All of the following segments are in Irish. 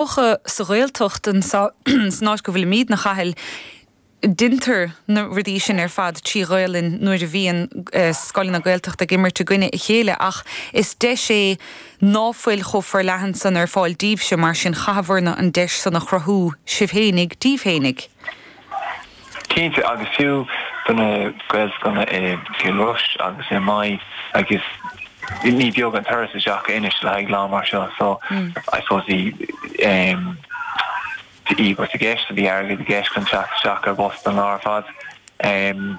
Mar sa Ghaeltacht san áit go bhfuilimíd 'na Chathail. Deintear na rudaí sin ar fad trí Ghaelainn nuair a bhíonn scoileanna Gaeltachta ag imirt i gcoinne a chéile ach is deis é ná fuil chomh forleathan san ar fáil díbhse mar sin chaitheabhairse an deis san a chruthú sibh fhéinig díbh fhéinig. Cinnte, agus fiú do na Gaelscoileanna i gCill Rois agus i Maigh agus ní beag an turas isteach anois le haghaidh lá mar seo. So, I suppose bhí ehm, bhí íobairt i gceist, bhí airgead i gceist chun teacht isteach ar bhus don lá ar fad. Ehm.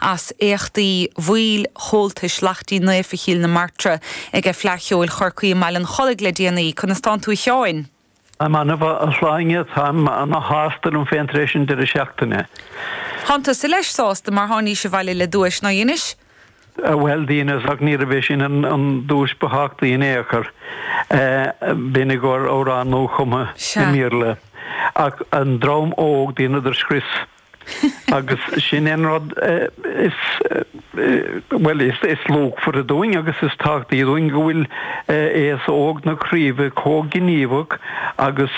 As éachtaí bhaill Chomhaltais Lachtaín Naofa Chill na Martra aige Fleadh Cheoil Chorcaí i mBaile an Chollaigh le déanaí. Conas atánn tú a Sheáin? Táim ana mhaith a Shláine, táim ana shásta liom féin tar éis an deireadh seachtaine. Thánn tusa leis sásta mar thánaís abhaile le duais, ná dheinis? Bhuel, dheineas ach níorbh é sin an duais ba thábhachtaí in aon chor. B'in i gcomhair amhrán nua-chumtha i mBéarla. Ach an dream óg, dheineadar scrios. Agus sin an rud is, bhuel, is luachmhaire dúinn agus is tábhachtaí dúinn, go bhfuil aos óg na craoibhe comh gníomhach agus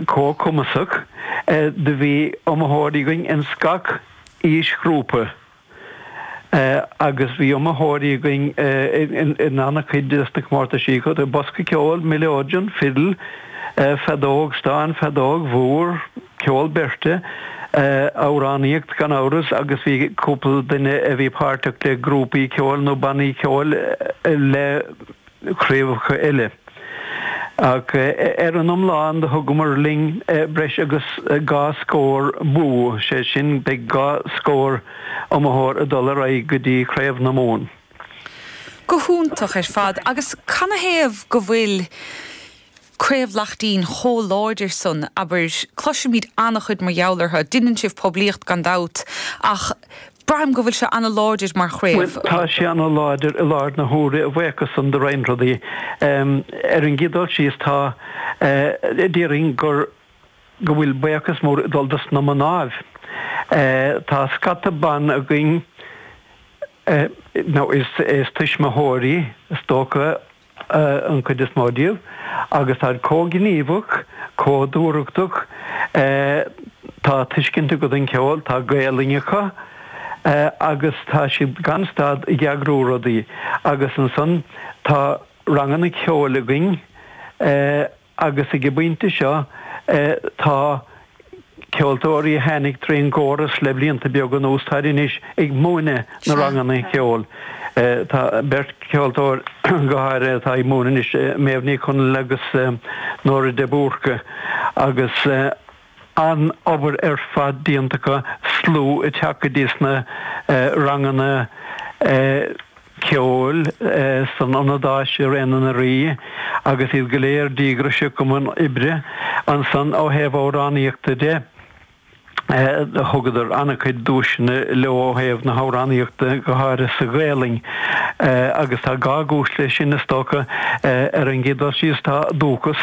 comh cumasach do bhí iomaitheoirí againn ins gach aoisghrúpa. agus bhí iomaitheoirí againn in an-chuid de na comórtais sin, bosca ceoil, mileoidean, fidil, feadóg stáin, feadóg mhór, ceol beirte, amhránaíocht, gan amhras, agus bhí cúpla duine a bhí páirteach le grúpaí ceoil nó bannaí ceoil le. craobhacha eile. Ach ar an iomlán, do thugamar linn breis agus dhá scór bua, sé sin, beidh dhá scór iomaitheoir ag dul ar aghaidh go dtí Craobh na Mumhan. Go hiontach ar fad, agus canathaobh go bhfuil Craobh Lachtaín chomh láidir san, abair. Cloisimid an-chuid mar gheall orthu. Deineann sibh poiblíocht gan dabht, ach braithim go bhfuil sé an-láidir mar chraobh. Bhuel, tá sé an-láidir i láthair na huaire agus a bhuíochas san do roinnt rudaí. Ar an gcéad dul síos tá, déarfainn gur, go bhfuil buíochas mór ag dul dos na mnáibh. Tá scata ban againn, now is tuismitheoirí is dócha, an chuid is mó díobh, agus táid comh gníomhach, comh dúthrachtach, tá tuiscint acu don gceol, tá Gaelainn acu, agus tá siad gan stad ag eagrú rudaí, agus ansan tá ranganna ceoil againn, Agus ag an bpointe seo, tá ceoltóirí a tháinig trí an gcóras le blianta beaga anuas, táid anois ag múineadh na ranganna cheoil. Tá beirt cheoltóir go háirithe atá ag múineadh anois, Méabh Ní Chonghaile agus Nóra de Búrca, agus. an-obair ar fad déanta acu, slua ag teacht go dtí sna ranganna ceoil san ionad Áise i Réidh na nDoirí agus iad go léir díograiseach i mbun oibre. Ansan ó thaobh amhránaíochta de, thugadar an-chuid duaiseanna leo ó thaobh na hamhránaíochta, go háirithe sa Ghaelainn, agus tá dhá chúis leis sin is dócha. Ar an gcéad dul síos tá dúchas.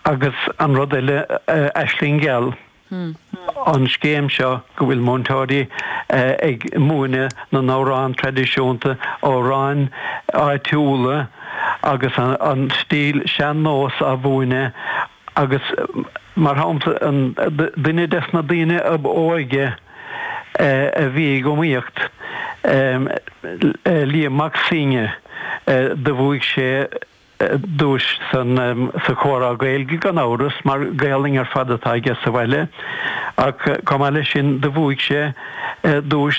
Agus an rud eile, Aisling Gheal, an scéim seo go bhfuil múinteoirí ag múineadh na n-amhrán traidisiúnta, amhráin áitiúla agus an stíl sean-nós á mhúineadh agus mar shampla duine des na daoine ab óige a bhí ag iomaíocht, Liam Mac Suibhne, do bhuaigh sé. duais sa, sa chomhrá Gaeilge gan amhras mar Gaolainn ar fad atá aige sa bhaile ach chomh maith leis sin do bhuaigh sé duais